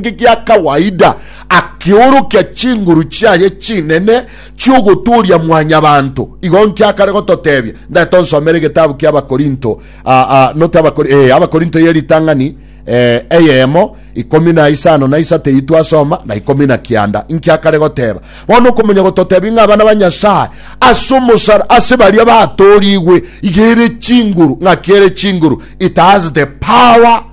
geke gia kawaida, akeorokia chinguru chiaye chinene chi'ogotooria mwanyabanto. Igo inki akare gototebia? Ndagete onsomere egetabu kia Abakorinto, a, a, not Abakori, eh, Abakorinto ye ritang'ani eh, eyemo, ikomi na isano na isato eyio twasoma, na ikomi na kianda. Inki akare goteba? Bono okomanya gototebia ng'a abana ba Nyasae ase omosara, ase baria batoorigwe, iga ere chinguru, ng'aki ere chinguru, it has the power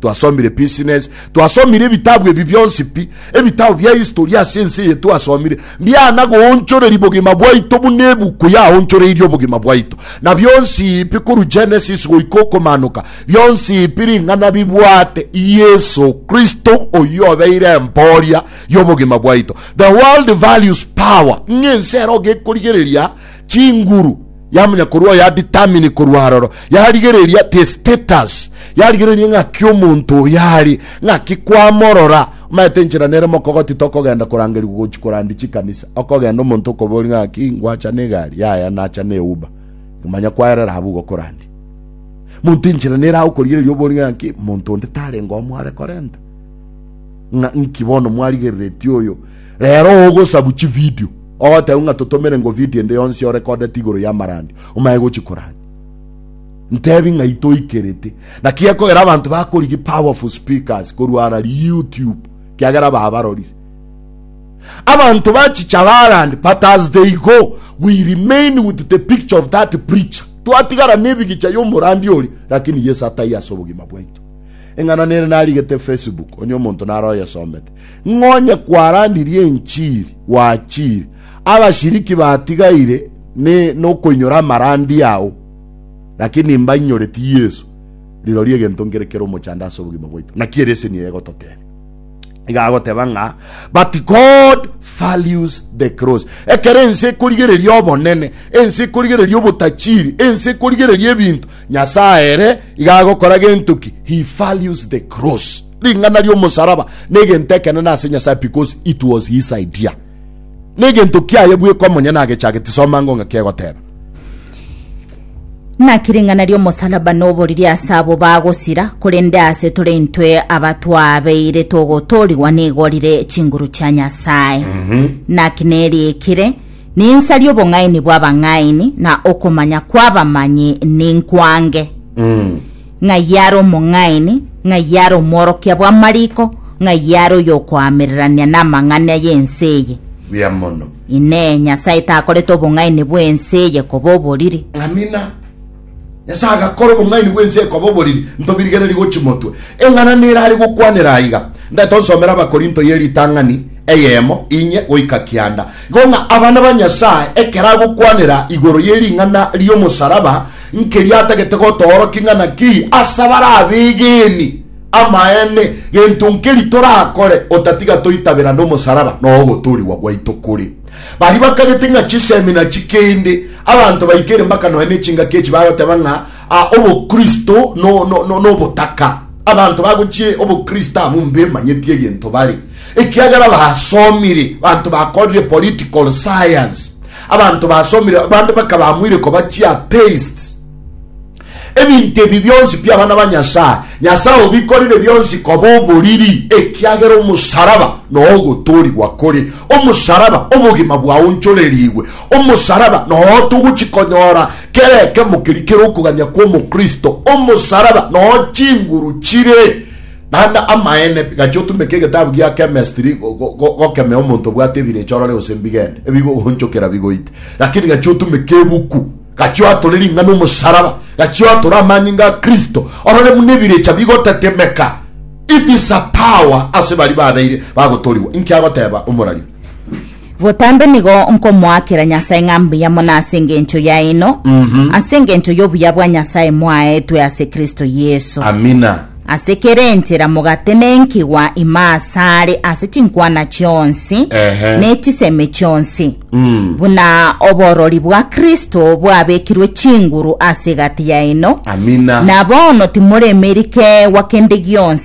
twasomire business twasomire ebitabu ebi bionsi pi ebitabu bia history ase ense eye twasomire mbiana goonchoreri bogima bwaito buna ebuku yaonchoreirie obogima bwaito na bionsi ipi koru genesis goika okomanoka bionsi ipi ring'ana bibwate yesu kristo oyio obeire emboria y'obogima bwaito the world values power ng'ense ero gekorigereria chinguru Yamunya korwa oyo ya determine korwa aroro. Yarigereria the status. Yarigereria ng'aki omonto oyo ari. Ng'aki kwamorora. Omaete enchera nere mokogoti tokogenda korangerigwa gochi korandi chikanisa. Okogenda omonto okobori ng'aki ngwacha negari yaya nacha ne uba. Manya kwaerera abu gokorandi. Monto enchera nere aho korigereria obori ng'aki monto onde tarenga omware korenta. Ng'a nki bono mwarigereretie oyo. Rero ogosabu chi video. Ogoteba ng'a totomere ngo video ende yonsi yorekodeti igoro y'amarandi, omaye gochi korania. Ntebi ng'a itoikerete. Naki gekogera abanto bakorigia powerful speakers korwa ara YouTube, kiagera babarorire. Abanto bachicha barandi, but as they go, we remain with the picture of that preacher. Twatigara nebigicha y'omorandi ori, lakini Yesu atai ase obogima bwaito. Eng'ana nere narigete Facebook, onye omonto naro oyesomete. Ng'a onye kwaranirie enchiri, gwachiire, abashiriki batigaire ne nokoinyora amarandi ao, lakini mbainyoreti Yeso, rirorio egento nkere kere omochando ase obogima bwaito. Naki ereseni eye egototebia? Iga agoteba ng'a, But God values the cross. Ekero ense ekorigereria obonene, ense ekorigereria obotachiri, ense ekorigereria ebinto, Nyasae ere iga agokora gento ki? He values the cross. ring'ana ri'omosaraba negento ekenene ase Nyasaye because it was his idea. Negento kiaye bweka omonye nagechageti soma ng'o ng'a kegoteba. Naki ring'ana ri'omosaraba noboriri ase abo bagosira, korende ase tore intwe abatwabeire togotoorigwa negorire chinguru chia Nyasaye. Mm -hmm. Naki neriikire, ninsa ri'obong'aini bw'abang'aini, na okomanya kw'abamanyi ninkwange. Mm. Ng'ai are omong'aini? Ng'ai are omworokia bw'amariko? Ng'ai are oyokoamererania namang'ana y'ense eye? Buya mono. Inee! Nyasae takorete obong'aini bw'ense eye koba oboriri? Amina. Nyasae agakora obong'aini bw'ense eye koba oboriri, ntobirigererie gochimotwe. Eng'ana nere are gokwanera aiga. Ndagete onsomere Abakorinto ye ritang'ani eyemo inye goika kianda. Igo ng'a abana ba Nyasae ekero agokwanera igoro ye ring'ana ri'omosaraba, Nkeria atagete gotoorokia ng'a naki ase abare abeegeni amaene gento nkeria torakore otatiga toitabera nomosaraba na ogotoorigwa gwaito kore. Baria bakagete ng'a chisemina chikende, abanto baikeire mpaka nonya ne chingaki echi bagoteba ng'a obokristo nobotaka. Abanto bagochia obokristo abwo mbemanyeti egento bare, ekiagera basomire, banto bakorire political science, Abanto basomire bande bakaba amoire koba chiateisti. Ebinto ebi bionsi pi abana ba Nyasae, Nyasae obikorire bionsi koba oboriri, ekiagera omosaraba noo ogotoorigwa kore omosaraba obogima bwaonchorerigwe. Omosaraba noo togochi konyora kera ekemo keria kere okogania kw'omokristo. Omosaraba noo chinguru chire Naende amaene, gachia otumeke egetabu gia chemistry go- go- go- gokemea omonto obwate ebirecha orore gose mbigende ebigogoonchokera bigoite. Lakini gachia otumeke ebuku, gachia oatore ring'ana omosaraba, gachia oatore amanyinga a Kristo orore buna ebirecha bigotetemeka. It is a power ase baria babeire bagotorigwa. Inki agoteba omoraria? Botambe nigo nkomoakera Nyasae ng'a mbuya mono ase engencho yaino, ase engencho y'obuya bwa Nyasae mwaetwe ase Kristo Yeso. Amina. Ase kera enchera mogatenenkigwa ime asare ase chinkwana chionsi Ehe. ne chisemi chionsi, buna oborori bwa Kristo bwabekirwe chinguru ase egati yaino. Amina. Na bono timoremeri keegwa kende gionsi.